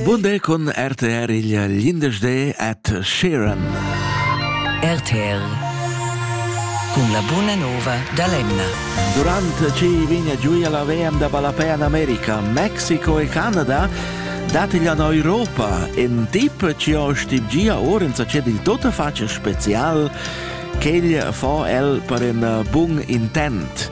Bunde cun RTR il glindesde at Sheeran. RTR cun la buna nova da l'Emna. Durant ci vigna giuia la VM da ballapè in America, Mexiko e Canada datiglia in Europa in tip ci ho stibgia ora in sachet il tota face special che il fa el per un bun intent.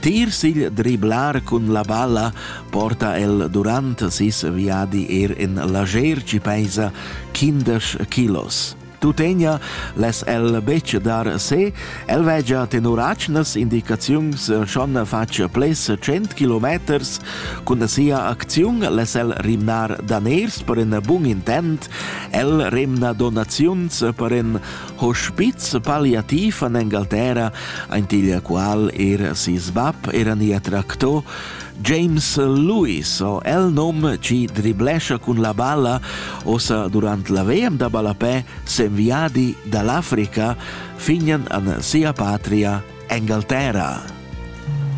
Tier sigl driblar cun la balla porta el durant sis viadi er en lager ci peisa quindesch kilos. Tutenia les el betg dar se, el vegia tenor acnas indicaziuns schon fatg ples 100 km cun sia acziun les el rimnar daners per in bun intent, el remna donaziuns per in Hospiz palliativ an Engalterra, aint igl qual er sis bab eran ia tracto, James Lewis, o el nom ci driblescia cun la balla, osa durant la VM da ballapè s'enviadi dall'Africa, fignan an sia patria Engalterra.